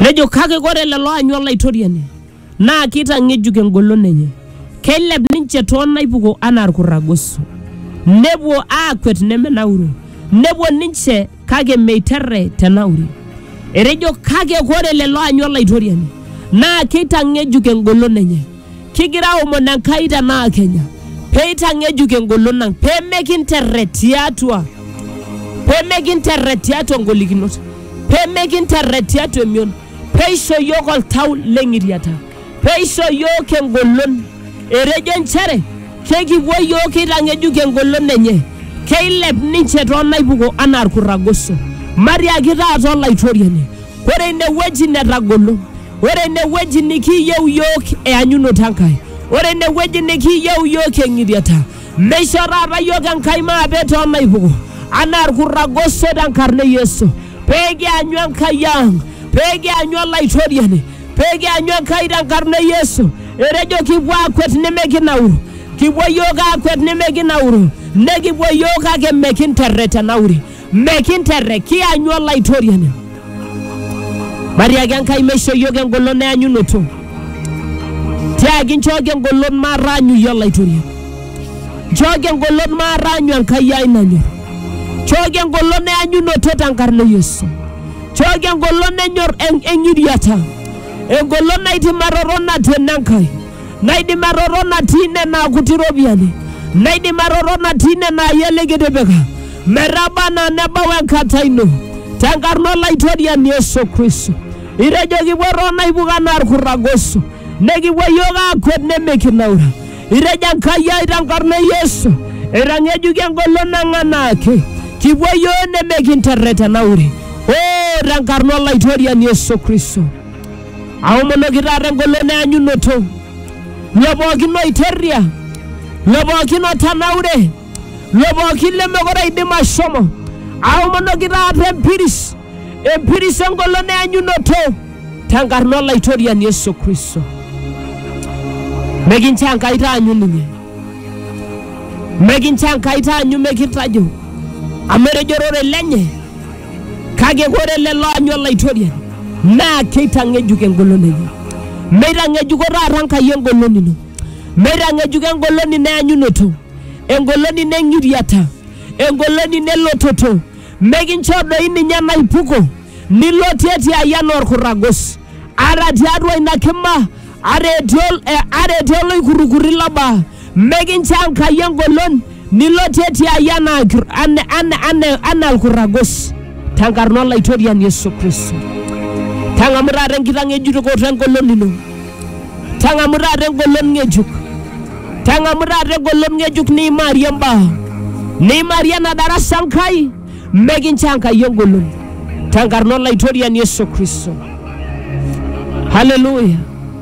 nejo kake ore lelo aanyu olaitoriani naa keitang'ejuk engolon enye keilep ninche too naipuko anaa ilkurragoso nepuo aakwet nemenauru nepuo ninche kake meiterre te nauri etejo kake ore lelo aanyu olaitoriani naa keitang'ejuk engolon enye Kigira aomon Enkai tenaa Kenya pee eitang'ejuk engolon ang, pee mekinterret tiatua pee mekinterret tiatua ngolikinot, pee mekinterret tiatua emion, pee eisho iyiook oltau le ng'iriata, pee eisho iyiook engolon. Etejo nchere kekipuo iyiook keitang'ejuk engolon enye, keilep ninche too naipuko anaa ilkurragoso. Matiaki taata Olaitoriani Ore inewueji netagolo, ore inewueji nikiyieu iyiook eanyunoto Enkai, ore inewueji nikiyieu iyiook eng'iriata, meisho taata iyiook Enkai maape too naipuko anaa ilkurragoso tenkarna e Yesu. Pee kianyu Enkai ang, pee kianyu Olaitoriani, pee kianyu Enkai tenkarna e Yesu. Etejo kipuo aakwet nimikinauru, kipuo iyiook aakwet nimikinauru, nekipuo iyiook kake mikinterret enauri. Mekinterre, kianyu Olaitoriani. Matiaki Enkai meisho iyiook engolon eanyunoto. Tiaki nchooki engolon mataanyu iyie Olaitoriani. Nchooki engolon mataanyu Enkai ai nanyor. Nchooki engolon eanyunoto tenkarna e Yesu. Nchooki engolon enyor eng'iriata. Engolon naitimatoto natuena Enkai. naidim atotona tine naa kuti iropiyiani naidim atotona tine naa iyie likitipika metaba anaa nebau enkata ino tenkarna olaitoriani Yesu Kristo itejo kipuo toonaipuko anaa irkurragoso nekipuo iyiook aakwet nemikinaura itejo Enkai ai tenkarna e Yesu eitang'ejuki engolon ang anaake kipuo iyiook nemikinterretenaure oo tenkarna olaitoriani Yesu Kristo Aomonoki taata engolon eanyunoto, lo pookin oiterria, lo pookin otanaure, lo pookin lemekure eidim ashomo. Aomonoki taata empiris, empiris engolon eanyunoto tenkarna Olaitoriani Yesu Kristo. Mekincho Enkai taanyu ninye, mekincho Enkai taanyu mekintajo, amu etejo ororei lenye Kake ore lelo aanyu Olaitoriani naa keitang'ejuk engolon enye. Meitang'ejuko taata Enkai engolon ino, meitang'ejuko engolon ino eanyunoto, engolon ino eng'iriata, engolon ino elototo, mekinchoo doi ninye enaipuko nilotie ti aji anaa olkurragos, ata tiatua ina kima, ata etii oloikurrukurri lo baa, mekinchoo Enkai engolon Nilotie tiai anaa ilkir- ana- ana- ana- anaa ilkurragos tenkarna olaitoriani Yesu Kristo. Tang'amu taata enkitang'ejukoto engolon ino. Tang'amu taata engolon ng'ejuk. Tang'amu taata engolon ng'ejuk niimaarie mbaa. Niimaarie ena darasa Enkai mekinchoo Enkai engolon tenkarna olaitoriani Yesu Kristo. Haleluya.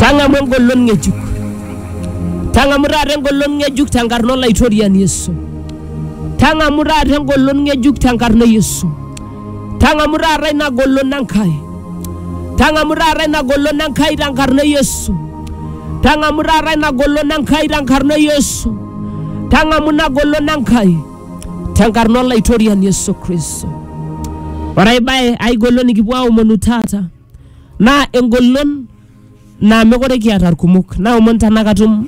Tang'amu engolon ng'ejuk. Tang'amu taata engolon ng'ejuk tenkarna Olaitoriani Yesu. Tang'amu taata engolon ng'ejuk tenkarna e Yesu. Tang'amu taata ina golon Enkai. Tang'amu taata ina golon Enkai tenkarna e Yesu. Tang'amu taata ina golon Enkai tenkarna e Yesu. Tang'amu ina golon Enkai. tenkarna olaitoriani Yesu Kristo. Ore ai bae ai golon nikipuo aomonu taata naa engolon naa mekure kiata irkumok. Naomon tenaa katum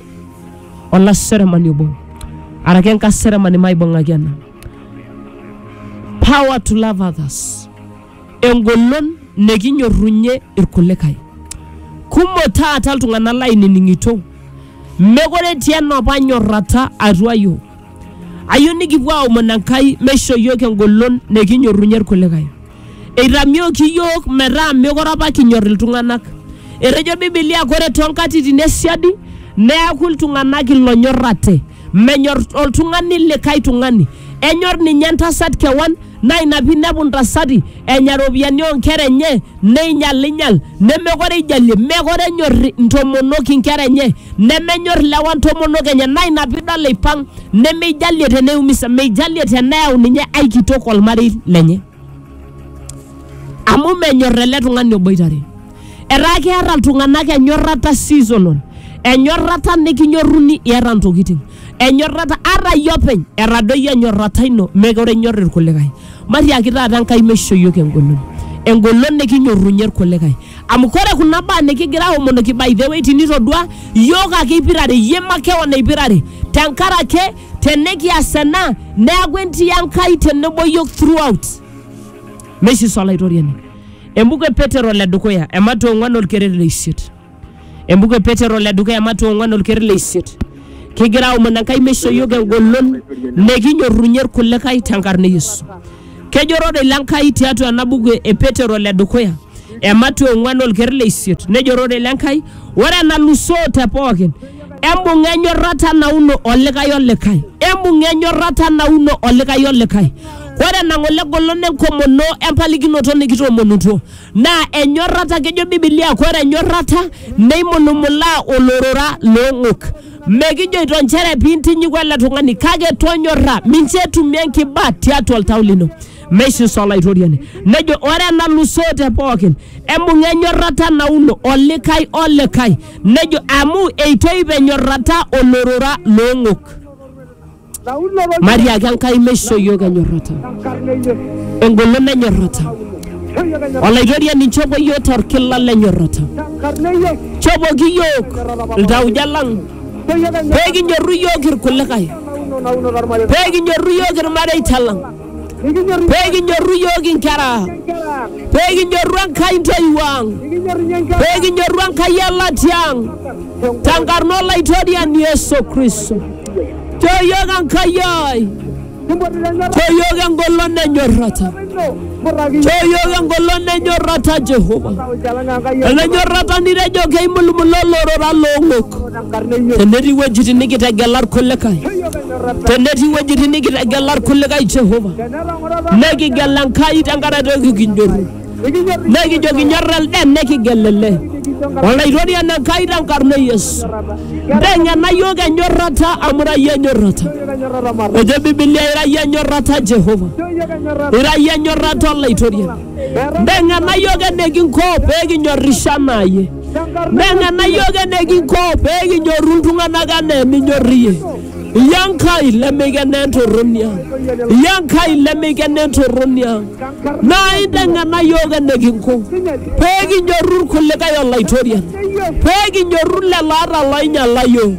olaseremani obo araki enkaseremani maibung'aki ena. Power to love others. Engolon nikinyorrunye irkulikae. Kumok taata iltung'anak lainining'ito mekure etii enopa nyorrata atua yiok. Ayieu nikipuo aomon Enkai meisho iyiook engolon nikinyorrunye irkulikae. Eitamioki iyiook metaa meekure apa kinyor iltung'anak. Etejo Bibilia ore too nkatitin e siadi neaku iltung'anak ilonyorrate. Menyor oltung'ani likae tung'ani. Enyor ninye entasat kewan naa ina pee inepu intasati enya iropiyiani oo nkera enye neinyalinyal nemekore eijalie mekore enyor ntomonok inkera enye nemenyor lewa ntomonok enye naa ina piidol eipang nemeijalie teneiumisa meijalie teneyau ninye ai kitok olmarei lenye amu menyor ele tung'ani oboitare etaa keeta iltung'anak enyorrata seasonal enyorrata nikinyorruni iyata ntokiting Enyorrata ata iyie openy etadoyie enyorrata ino mekure inyor irkulikae. Matiaki taata Enkai meisho iyiook engolon. Engolon nikinyorrunye irkulikae. Amu kore kuna baa nikigira aomonoki by the way tinitodua iyiook ake ipirare iyie makewon ipirare tenkaraki tenikias ena neaku entii Enkai tenebo iyiook throughout. Meishiso Olaitoriani. Embuku e Petero le dukuya, ematua e ong'uan olkeret le isiet. Embuku e Petero le dukuya Matua ong'wan olker le isiet. Kigira aomon Enkai meisho iyiook engolon nikinyorrunye irkulikae tenkarna e Yesu. Kejo ororei le Nkai tiatua ena buku e Petero le dukuya e Matua ong'wan olker le isiet. Nejo ororei le Nkai, ore enalusoo te pookin, embung'a enyorrata nauno olikae olikae, embung'a enyorrata nauno olikae olikae. Ore enang'ole engolon enkomono empalikinoto nikitoomonutuo. naa enyorrata kejo bibilia kore enyorrata neimulumulaa olorora loong'ok mekijoito nchere piintinyiku ele tung'ani kake tonyorra mincho etumie enkiba tiatua oltau lino meishiso olaitoriani nejo ore enalusoo te pookin embung'a enyorrata nauno olikae olikae nejo amu eitoip enyorrata olorora loong'ok matiaki Enkai meisho iyiook enyorrata engolon nenyorrata olaitoriani nchopo iyiook torkila lenyorrata chopoki iyiook iltauja lang pee kinyorru iyiook irkulikae pee kinyorru iyiook irmareita lang Nikinyorru pee kinyorru iyiook inkera, inkera. pee kinyorru Enkai intoiwuo ang', Nikinyorru ninye inkera. pee kinyorru Enkai elatia ang' tenkarna Olaitoriani Yesu Kristo. Choo iyiook Enkai ai, Kimpotu tenyorrata choo iyiook engolon enyorrata, ino. Murraki choo iyiook engolon enyorrata Jehova. Oljalan Enkai Enyorrata nitejo keimulumula olorora loong'ok. tenetii wuejitin nikitegela irkulikae tenetii wuejitin nikitegela irkulikae jehova nekigel enkai tenkaraki toki kinyorru nekijo kinyor elde nekigel ele olaitorian enkai tenkarna e yesu nteng'ena yiok enyorrata amu ira yie enyorrata ejo bibilia ira yie enyorrata jehova ira yie enyorrata olaitoriani nteng'ena yiok enikinko pee kinyorrisho anaa yie Neng'ena yiok enekinko pee kinyorru iltung'anak anaa eninyor iyie. Iyie Enkai lemikenaa entorroni ang. Iyie Enkai lemikenaa entorroni ang. Naa inteng'ena yiok enekinko pee kinyorru irkulikae o Laitoriani. Pee kinyorru lelo ata looinyala yiok.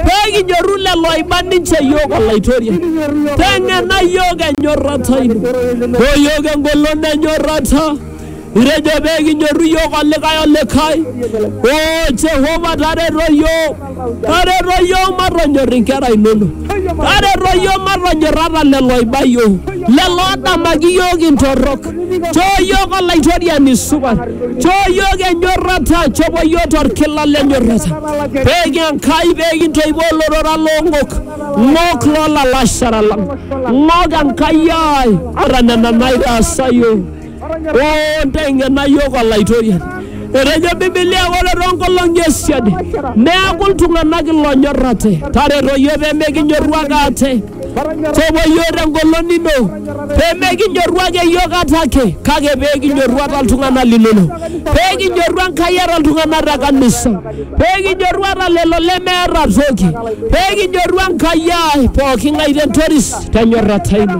Pee kinyorru lelo oiba ninche yiok o Laitoriani. Teng'ena yiok enyorrata ino. Nchoo yiok engolon enyorrata. Itejo pee kinyorru iyiook olikae olikae. Oo Jehova tareto iyiook, tareto iyiook matonyorr inkera inonok, tareto iyiook matonyorr ata lelo oiba iyiook, lelo oodamaki iyiook intorrok. Choo iyiook Olaitoriani supat, choo iyiook enyorrata, chopo iyiook torkila le nyorrata. Peeku Enkai pee kintoipo olorora loo ng'ok, ng'ok loo lalashera lang, ng'ok Enkai ai ata nena naitaasa iyiook. Oo nteng'ena iyiook Olaitoriani. Etejo Bibilia ore too nkolong'i e siadi neaku iltung'anak iloonyor ate. Tareto iyiook pee mikinyorru ake ate. Shomo iyiook te ngolon ino pee mikinyorru ake iyiook ate ake kake pee kinyorru ate iltung'anak linono. Pee kinyorru Enkai ata iltung'anak te kanisa. Pee kinyorru ata lelo lemeeta toki. Pee kinyorru Enkai ai pooki ng'ae te ntoris te nyorrata ino.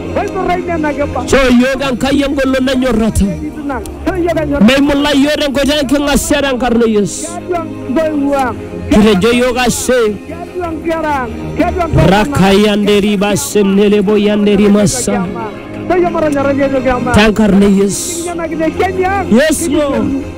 Choo iyiook Enkai engolon enyorrata. Meimulai iyiook tenkoitoi enking'asia tenkarna e Yesu. Kitejo iyiook ashe. Rakaya nderiba senelebo ya nderimasa. Tenkarna e Yesu. Yes, Lord.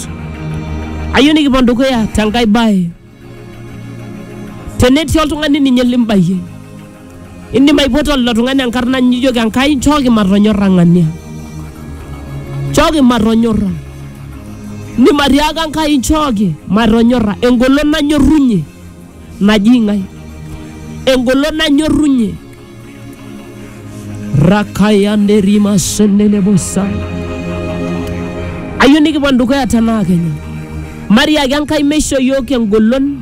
Christ. Ayieu nikipuo dukuya tenkae bae. Tenetii oltung'ani ninye limbayie, indim aipoto lilo tung'ani enkarna nijoki Enkai nchooki matonyorra ng'ania. Nchooki matonyorra. Indim atiaaka Enkai nchooki matonyorra engolon nanyorrunye naji ng'ae. Engolon nanyorrunye rakayande rima sendele bosa ayieu nikipuo dukuya tenaa kenya mariaki enkai meisho yiok engolon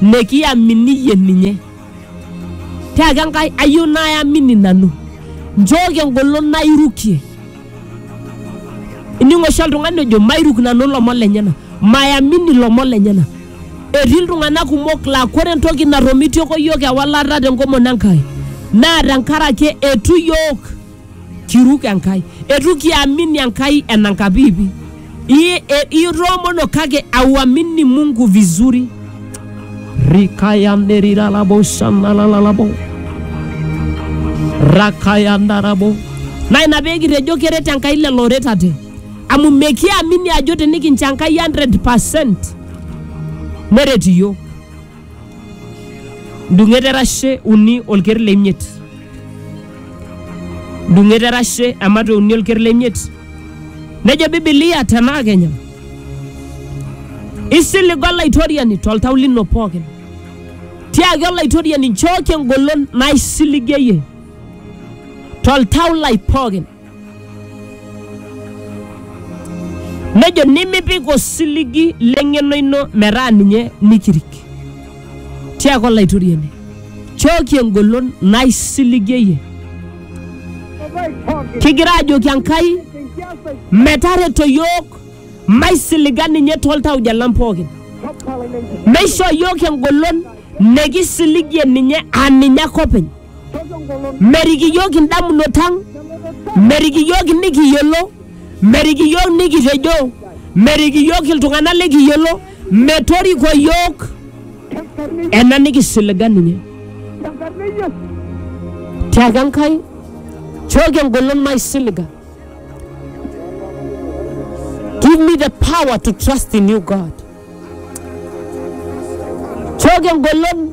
nikiaminiyie ninye tiaki enkai ayieu nayamini nanu nchooki engolon nairukie Ining oshi oltung'ani ojo mairuk nanu ilomon lenyena, mayamini ilomon lenyena. Etii iltung'anak kumok laa kore entoki natomitioko iyiook ewalata tenkomono Enkai naa tenkaraki eitu iyiook kiruk Enkai, eitu kiamini Enkai enankapiipi. I- e- iroomono kake auamini mungu vizuri rikayanderiralabosanalalalabo rakayandarabo na ina pee kitejo keret enkai lelo oretate amu mekiamini ajo tenikincho enkai 100 neret iyiok ndung'et erashe uni olker le imiet ndung'et erashe emate uni olker le imiet nejo bibilia tenaa kenya isiligo olaitoriani toltau lino pookin tiaki olaitoriani nchooki engolon naisiligie iyie toltau lai pookin Nejo nimipik osiligi leng'eno ino metaa ninye nikirik. Tiaaka Olaitoriani, chooki engolon naisiligie iyie. Kigira ajoki Enkai metareto iyiook maisiliga ninye toltauja lang pookin. Meishoo iyiook engolon nikisiligie ninye aa ninye ake openy. Merik iyiook indamunot ang, merik iyiook nikiyiolo, merik iyiook nikitejo, merik iyiook iltung'anak likiyiolo, metoriko iyiook ena nikisiliga ninye. Tiaki Enkai, chooki engolon maisiliga. Give me the power to trust in you, God. Chooki engolon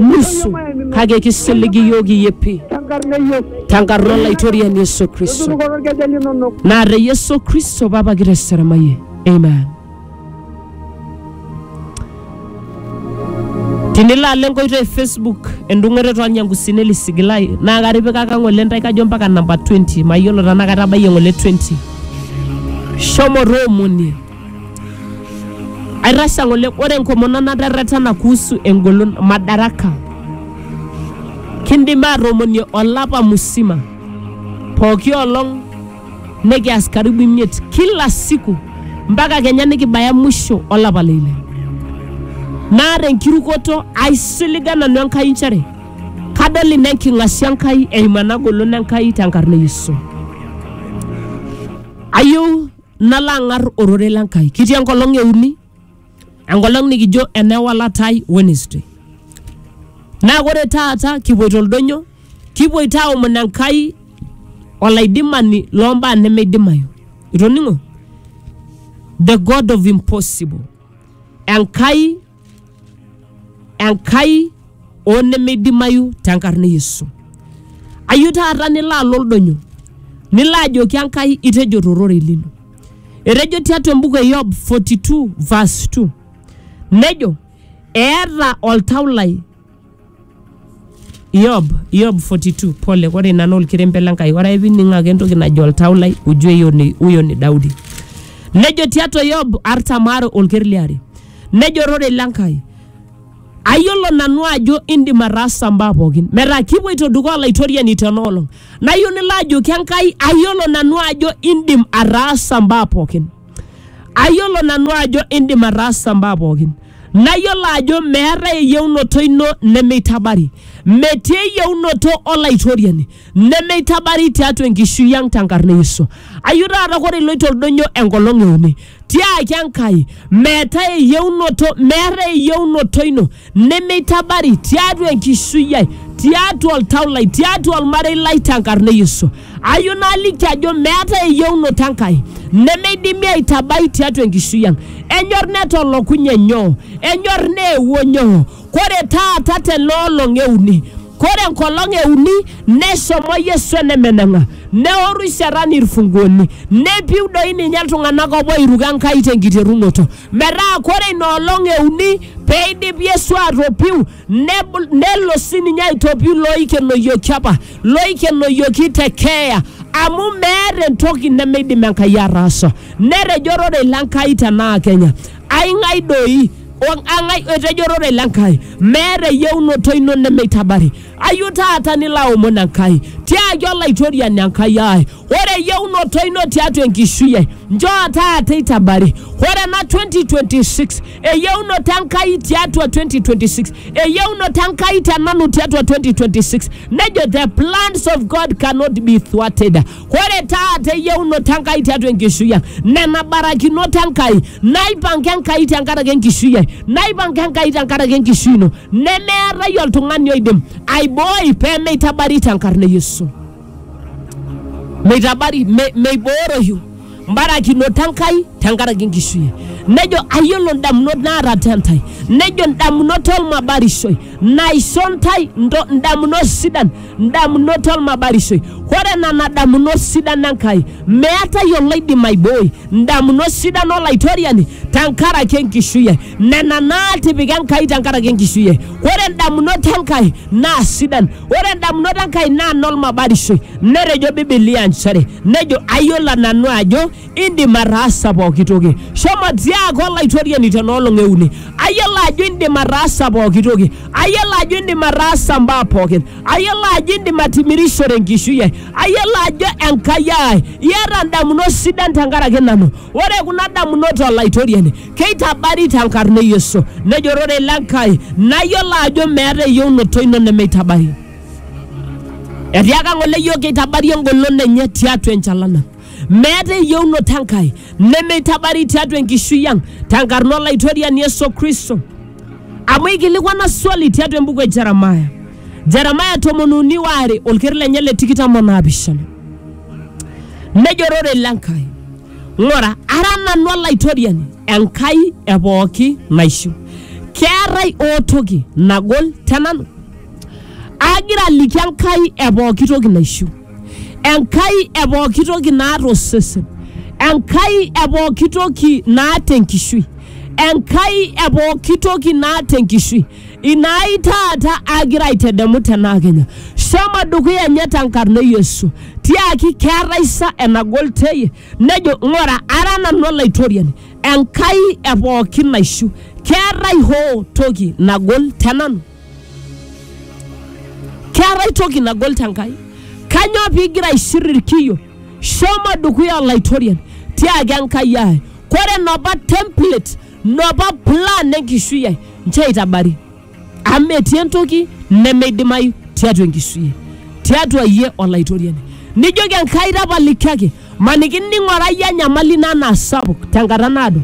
nusu kake kisilig iyiook iyepi tenkarna Yesu. tenkarna olaitoriani Yesu Kristo Tutunukoto irkeje linonok. naa te Yesu Kristo papa kiteseramayie amen tinilo alo enkoitoi e Facebook endung'oto toolnyankusini lisigilai naa katipikaka ng'ole ntae kajo mpaka namba 20 mayiolo tenaa katabayie ng'ole 20 shomo toomonie Aitasha ng'ole ore enkomono naterretena kuhusu engolon madaraka. Kindim aatomonie olapa musima pooki olong nikias karibu imiet kila siku mpaka kenya nikibaya mwisho olapa le ile. Naa tenkirukoto aisiliga nanu Enkai nchere kadol ina enking'asia Enkai eimu ena golon Enkai tenkarna e Yesu. Ayieu nalo ang'ar ororei le Nkai. Kitii enkolong e uni, enkolong nikijo enewalata ai Wednesday. Naa ore taata kipuoito oldonyo, kipuoito aomon Enkai olaidimani loo mbaa nemeidimayu. Itoning'o? The God of impossible. Enkai enkai oo nemeidimayu tenkarna e Yesu. Ayieu taata nilo alo oldonyo, nilo ajoki Enkai itejo tororei lino. Etejo tiatua embuku e Yob 42 verse 2 nejo eeta oltau lai Yob, Yob 42, pole, ore ina naa olkerembe le Nkai. Ore ake pining' ake entoki najo oltau lai, ujue hiyo ni, huyo ni Daudi. Nejo tiatua Yob artam aare olker liare, nejo ororei le Nkai, ayiolo nanu ajo indim ataasa mbaa pookin. Metaa kipuoito dukuya Olaitoriani tena olong'. Nayieu nilo ajoki Enkai, ayiolo nanu ajo indim ataasa mbaa pookin. Ayiolo nanu ajo indim ataasa mbaa pookin. Nayiolo ajo meetae eyieunoto ino nemeitabari. Metii eyieunoto olaitoriani nemeitabari tiatua enkishui ang tenkarna e Yesu. Ayieu taata ore iloito oldonyo enkolong e uni, tiaki Enkai meetae eyieunoto, meetae eyieunoto ino nemeitabari tiatua enkishui ai tiatua oltau lai tiatua olmarei lai tenkarna e yesu ayieu naliki ajo meetae eyieunoto enkai nemeidimi aitabai tiatua enkishui ang enyor netolokunye nyoo enyor neewuo nyoo kore taata tena olong euni kore enkolong euni neshomo yesu enemeneng'a neoru shetani irfunguoni nepiu doi ninye iltung'anak opo oiruko enkai tenkiterunoto metaa kore ina olong e uni pee eidip Yesu atopiu nebul- nelo sininye aitopiu loikenoyioki apa loikenoyioki te keeya amu meeta entoki nemeidim Enkai ataasa. Netejo ororei le Nkai tenaa Kenya, aing'ae doi o ang'ae etejo ororei le Nkai, meeta eyieunoto ino nemeitabari. Ayu taata nilo aomon Enkai tiaki Olaitoriani Enkai ai, ore eyieunoto ino tiatua enkishui ai, njoo taata eitabari. Ore ena 2026, eyieunoto Enkai tiatua 2026, eyieunoto Enkai te nanu tiatua 2026, nejo the plans of God cannot be thwarted. Ore taata eyieunoto Enkai tiatua enkishui ang, nena barakinot Enkai, naipanga Enkai tenkaraki enkishui ai, naipanga Enkai tenkaraki enkishui ino, nemeetae oltung'ani oidim aibooi pee meitabari tenkarna e Yesu. Meitabari, me, meibooroyu. mbarakinot Enkai tenkaraki enkishui nejo ayiolo ndamunot naata te ntae nejo ndamunot olmabarishoi naisho ntae ndo- ndamunot sidan ndamunot olmabarishoi ore nena damunot sidan Enkai meetae oloidim aibooi ndamunot sidan olaitoriani tenkaraki enkishui ai nena naatipika Enkai tenkaraki enkishui ai ore ndamunot Enkai naa sidan ore ndamunot Enkai naa nolmabarishoi netejo bibilia nchere Nejo, Ayiolo nanu ajo indim ataasa pooki toki. Shomo tiaaka olaitoriani tena olong e uni. Ayiolo ajo indim ataasa pooki toki. Ayiolo ajo indim ataasa mbaa pookin. Ayiolo ajo indim atimirishore enkishui ai. Ayiolo ajo Enkai ai, iata ndamunot sidan tenkaraki nanu. Ore kuna damunot olaitoriani keitabari tenkarna e Yesu. Nejo, Rorei le Nkai, nayiolo ajo meeta eyieunoto ino nemeitabari. etiaka ng'ole yiok keitabari engolon enye tiatua enchalan ang meeta eyieunoto enkai nemeitabari tiatua enkishui ang tenkarna olaitoriani yesu kristo amu eikilikwana swali tiatua embuku e jeremaya jeremaya tomon uni waare olker lenye le tikitam onaapishana nejo ororei lenkai ng'ura ara nanu olaitoriani enkai e pooki naishu keetae ootoki nagol tenanu Aagira aliki Enkai e pooki toki naishiu, Enkai e pooki toki naata osesen, Enkai e pooki toki naata enkishui, Enkai e pooki toki naata enkishui. Ina ai taata agira aitedemu tenaa kenya. Shomo dukuya nye tenkarna e Yesu. Tiaki keetai sa enagol teye? Nejo ng'ura ara nanu Olaitoriani, Enkai e pooki naishiu. Keetai hoo toki nagol te nanu? keetae toki nagol tenkai kanyoo pigira aishir irkiyo shomo dukuya olaitorian tiaki enkai ai kore nopa template nopa plan enkishui ai nchoo eitabari amu metii entoki nemeidimayu tiatua enkishui ai tiatua iyie olaitoriani nijoki enkai tapalikiaki maniki ning'orayie enyamali ino anaa sapuk tenkata naado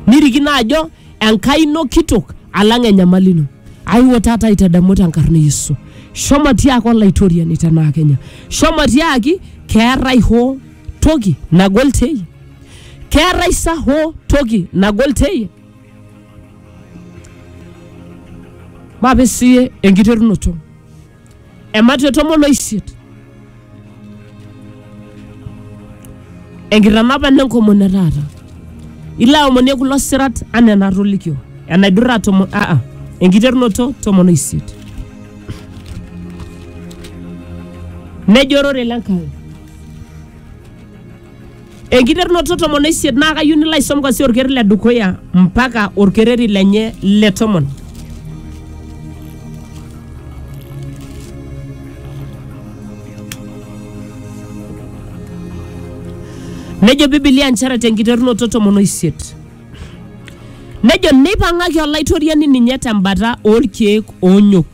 nirikino ajo Enkai ino kitok alang enyamali ino. Aiwuo taata aitadamu tenkarna e Yesu. Shomo tiaaki olaitoriani tenaa kenya. Shomo tiaaki keetae hoo toki nagol teyie. Keetae sa hoo toki nagol teyie. Maape siyie enkiterunoto. ematua e tomon oisiet enkitanapa nenkomono e taata ilo aomonie kulo sirat anaa enatolikio enaidurra tomon aa enkiterunoto tomon oisiet nejo orore le Nkai Enkiterunoto tomon oisiet naa kayieu nilo aisom kwanzia orkereri le dukuya mpaka orkereri lenye le tomon. Nejo Biblia nchere tenkiterunoto tomon oisiet. Nejo neipang'aki olaitoriani ninye tembata oorkeek oonyok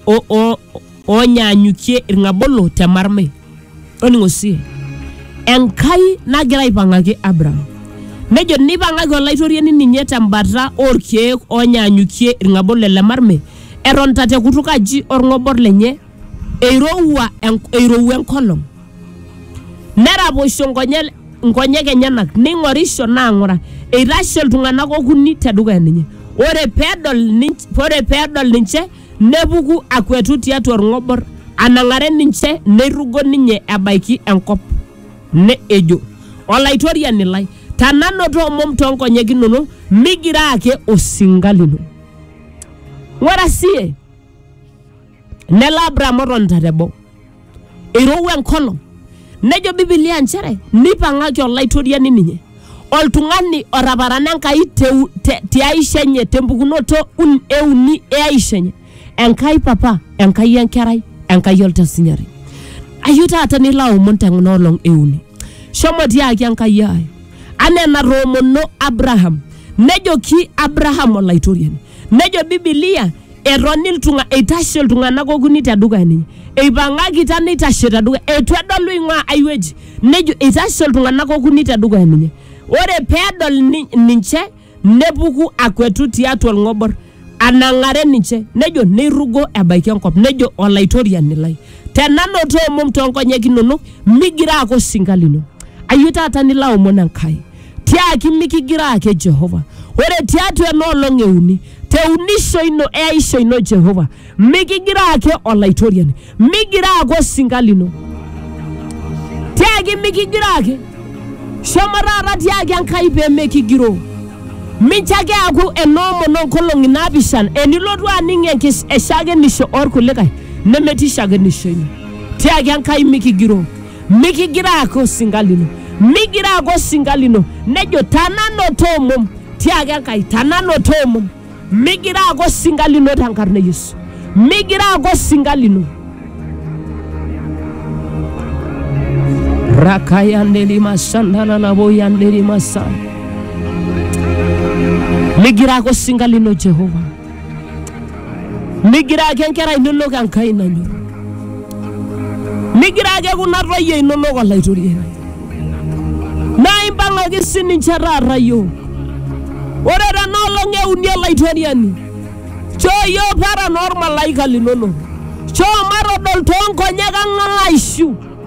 o- o- oonyaanyukie ilng'abolo te marmai. Toning'o sii, Enkai nagira aipang'aki Abraham. Nejo, Neipang'aki Olaitoriani ninye te mbata oo lkeek oonyaanyukie ilng'abolo ele marmai, etonita te kutuk aji o lng'obor lenye, eirowua eirowua enkolong. Neraposho nkonyek nkonyek enyenak, neing'orisho naa ng'ura, eitashe iltung'ana okuni te dukuya ninye. Ore pee edol ninche, ore pee edol ninche nepuku akuetu tiatua olng'obor anang'are ninche neirrugo ninye ebaiki enkop ne ejo olaitoriani lai tananoto omom too nkonyek inono migira ake osinka lino ng'ura sie nelo Abraham otonita teboo eirowua enkolong nejo bibilia nchere neipang'aki olaitoriani ninye oltung'ani otaparana enkai teu- te- tiaisha enye tempukunoto un- euni eaisha enye enkai papa enkai enkerai enkai oltasinyari ayieu taata nilo aomon teng'na olong euni shomo tiaki enkai ai anaa enatoomono abraham nejoki abraham olaitoriani Nejo Bibilia, etoni iltung'a, eitashe iltung'anak okuni te dukuya ninye. Eipang'akita neitashe te dukuya, eitu edolu eing'ua ai wueji. Nejo eitashe iltung'anak okuni te dukuya ninye. Ore pee edol ni- ninche, nepuku akuetu tiatua olng'obor, anang'are ninche. Nejo neirrugo ebaiki enkop, nejo Olaitoriani lai, tenanoto omom too nkonyek inono, migira ake osinka lino. Ayieu taata nilo aomon Enkai. tiaki mikigira ake Jehova. Ore tiatua ena olong euni, te unisho ino eaisho ino Jehova, mikigira ake Olaitoriani, migira ake osinka lino, tiaki mikigira ake, shomo taata tiaki Enkai pee mikigiroo. Mincho ake eaku enoomon oonkolong'i naapishana, enilotu aning enkis- eshakenisho oorkulikae nemetii shakenisho ino. Tiaki Enkai mikigiroo. mikigira ake osinka lino migira ake osinka lino nejo tananoto omom tiaki enkai tananoto omom migira ake osinka lino tenkarna e yesu migira ake osinka lino rakayandelimashantanaboyandelimasa migira ake osinka lino jehova Migira ake nkera inonok Enkai nanyor, migira ake kuna toyie inonok Olaitoriani. Naa impang'aki sininche taata iyiook. Ore tena olong e uni Olaitoriani, choo iyiook paran olmalaika linonok, choo matodol too nkonyek ang aishu.